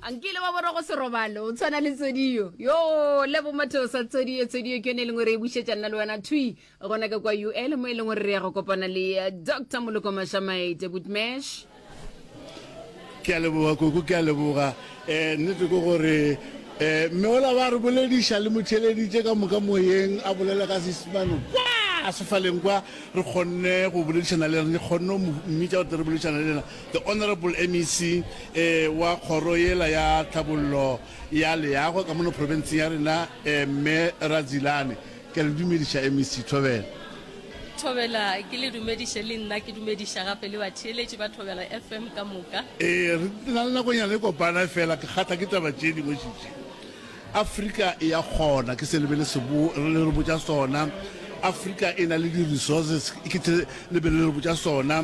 ankile wa bora go se robale o tshwana le tsodiyo yo le bomatheo sa tsodiyo tsodiyo ke yone e leng gore e bušetša nna le wena thui gona ka kwa ul mo e leng gore re ya go kopana le eh, dr moloko mashamaite butmash ke a leboga koko ke a leboga um nnete ke gore um mme ola ba re bolediša le motheleditše ka moka moyeng a bolela ka sesimane kwa sefaleng kwa re kgonne go boledišana le yena ke kgonne go mo mmitša gore tle re boledišana le yena The Honourable MEC wa kgoro yela ya tlhabollo ya leago ka mono profenseng ya rena Mme Radzilane ke a le dumediša MEC Thobela. Thobela ke le dumediše le nna ke dumediša gape le batheeletši ba Thobela FM ka moka. Ee re na le nakonyana e kopana efela ke kgatha ke taba tše dingwe šetše. Afrika e ya kgona ke se le be le se bo le re botša sona Afrika e na le di resources ke le be le re botša sona.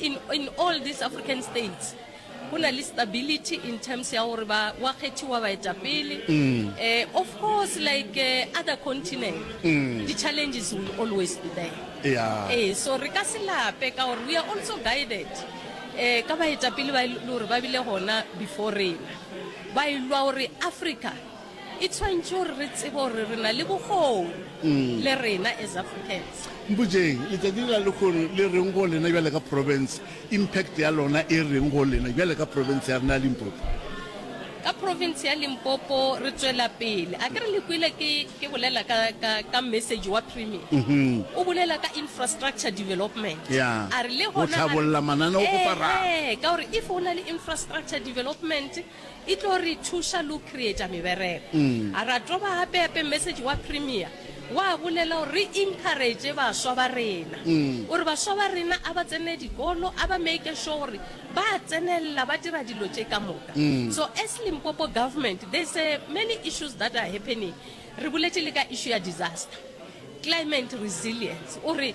In, in all these African states go na le stability in terms ya gore ba wa kgethiwa baetapele mm. eh, of course like uh, other continent mm. the challenges will always be there yeah. eh, so re ka se lape ka gore we are also guided eh, ka baetapele ba e le gore ba bile gona before rena ba e lwa gore africa E tshwanetše gore re tsebe gore re na le bokgoni mm. le rena as Africans. Mpotšeng, letšatši la lekgono le reng go lena bjale ka province? Impact ya lona e reng go lena bjale ka province ya rena ya Limpopo? Ka province ya Limpopo re tswela pele. A ke re le kwile ke ke bolela ka ka ka message wa premier. Mm -hmm. O bolela ka infrastructure development. Yeah. A re le hona go tlhabolla mananeo go fara. Eh, eh, ka gore if o na le infrastructure development e tlo re thuša le go creata mebereko mm. a ra toba gape gape message wa premier wa bolela gore re encourage baswa ba rena mm. gore baswa ba rena a ba tsene dikolo a ba make sure gore ba tsenelela ba dira dilo tše ka moka mm. so as limpopo government there's uh, many issues that are happening re boletše le ka issue ya disaster climate resilience o re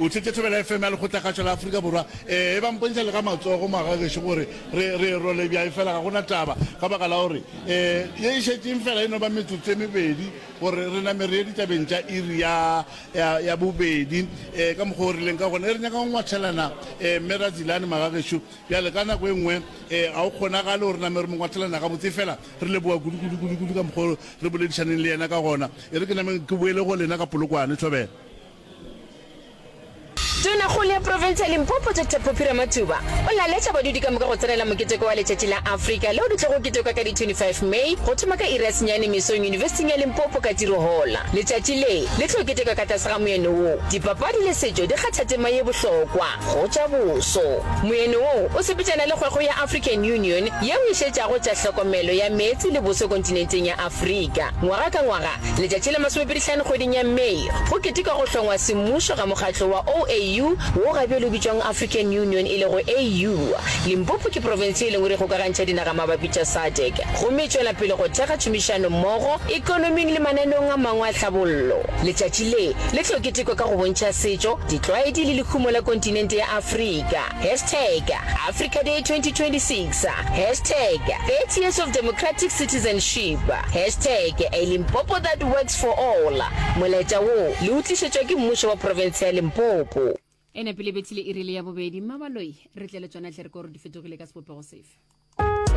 O thetše Thobela FM ya Lekgotlagatšwa la Afrika Borwa e ba mpontšha le ga matsogo magagešo gore re re role bjai fela ga go na taba ka baka la gore e ye e šetšeng fela e no ba metsotso e mebedi gore re name re ye ditabeng tša iri ya ya, ya bobedi e ka mokgwa o rileng ka gona e re nyaka go ngwathelana e mme ra zilane magagešo bjale ka nako e nngwe e ga o kgonagale gore name re mo ngwathelana gabotse fela re leboa kudu kudu kudu kudu ka mokgwa re boledišaneng le yena ka gona e re ke name ke boele go lena ka polokwane Thobela Tonakgolo ya profense ya Limpopo Doctor Poppy Ramathuba o laletša badudi ka moka go tsenela moketeko wa letšatši la Afrika leo le tlogo ketekwa ka di 25 May go thoma ka iri ya senyane mesong yunibesithing ya Limpopo ka tiro hola. Letšatši le le tlo ketekwa ka tlase ga moyeno wo Dipapadi le setšo di kgatha tema ye bohlokwa go tša boso. Moyeno wo o sepetšana le kgwekgo ya African Union yeo e šetšago tša hlokomelo ya meetse le boso kontinenteng ya Afrika. Ngwaga ka ngwaga, letšatši la masomepedihlano kgweding ya May, go ketekwa go hlongwa semmušo ga mokgatlo wa OAU, wo ga bjalo o bitšwang African Union e lego AU. Limpopo ke profense e lengwe re kgokagantšha dinaga mabapi tša SADC, gomme e tšwela pele go thekga tšhomišano mmogo ekonoming le mananeong a mangwe a tlhabollo. Letšatši le, le tlo ketekwa ka go bontšha setšo, ditlwaedi le lehumo la kontinente ya Afrika. Hashtag Africa Day 2026 Hashtag 30 years of democratic citizenship Hashtag A Limpopo that works for all Molaetša wo le o tlišetšwa ke mmušo wa profense ya Limpopo. E nepile bethile iri le ya bobedi. Mma Baloi, re tle le tsona hle re ko re di fetogile ka sebopego sefe?